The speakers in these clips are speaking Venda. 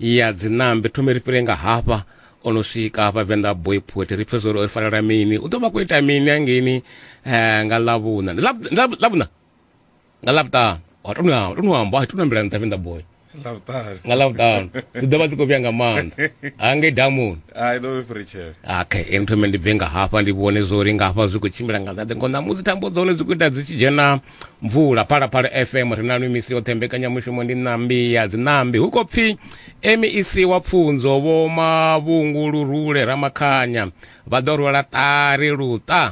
ya dzinambe thome ri fhire nga hafha o no swika hafha venḓa boy poet ri pfe zwo ri fanela mini u ḓo vha khou ita mini hangeini um nga ḽavhuṋa Ndi Ḽav- Ḽav- ḽavhuṋa nga ḽavhuṱanu wa to nwa- to no amba hai to no ambela nṱha venḓa boy Lavutari. nga ḽavhuṱanu dzi ḓo vha dzi khou vhuya nga maanḓa hangei damuni Ai ḓo vhe fritshele. okay ini thome ndi bve nga hafha ndi vhone zwo ri nga hafha zwi khou tshimbila nga nḓaḓe ngo ṋamusi thambo dza hone dzi khou ita dzi tshi dzhena mvula phalaphala fm ri na lwi misi yoṱhe mbekanyamushumo ndi ṋambi ya dziṋambi hu khou pfi mec wa pfunzo vho mavhungu lurule ramakhanya vha ḓo rwela ṱari luṱa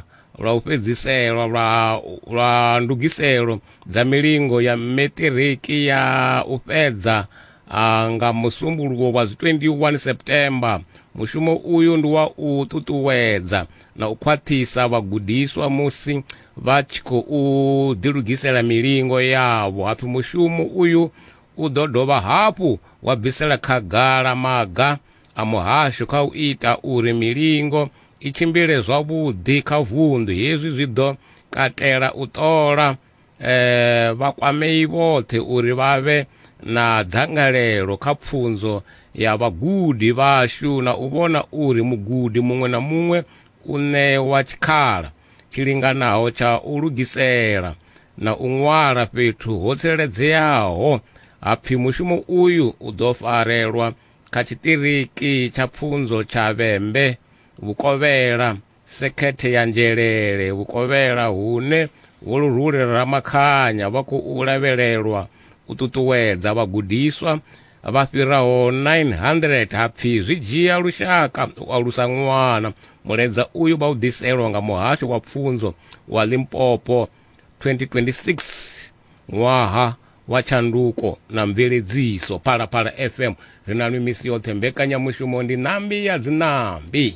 lwa u fhedziselwa lwa, lwa ndugiselo dza milingo ya metiriki ya u fhedza a, nga musumbuluwo wa 21 september mushumo uyu ndi wa u ṱuṱuwedza na u khwaṱhisa vhagudiswa musi vha tshi khou ḓilugisela milingo yavho hapfi mushumo uyu u ḓo dovha hafhu wa bvisela khagala maga a muhasho kha u ita uri milingo i tshimbile zwavhuḓi kha vunḓu hezwi zwi ḓo katela u ṱola eh vha kwamei vhoṱhe uri vha vhe na dzangalelo kha pfunzo ya vhagudi vhashu na u vhona uri mugudi muṅwe na muṅwe u ṋewa tshikhala tshi linganaho tsha u lugisela na u ṅwala fhethu ho tsireledzeaho ha pfi mushumo uyu u ḓo farelwa kha tshiṱiriki tsha pfunzo tsha vhembe vhukovhela sekhethe ya nzhelele vhukovhela hune vholuhuli ramakhanya vha khou lavhelelwa u ṱuṱuwedza vhagudiswa vha fhiraho 900 ha pfi zwi dzhia lushaka u alusa ṅwana mulaedza uyu vha u ḓiselwa nga muhasho wa pfunzo wa limpopo 2026 ṅwaha wa tshanduko na mveledziso phalaphala fm ri na lwi misi yoṱhe mbekanyamushumo ndi ṋambi ya dzinambi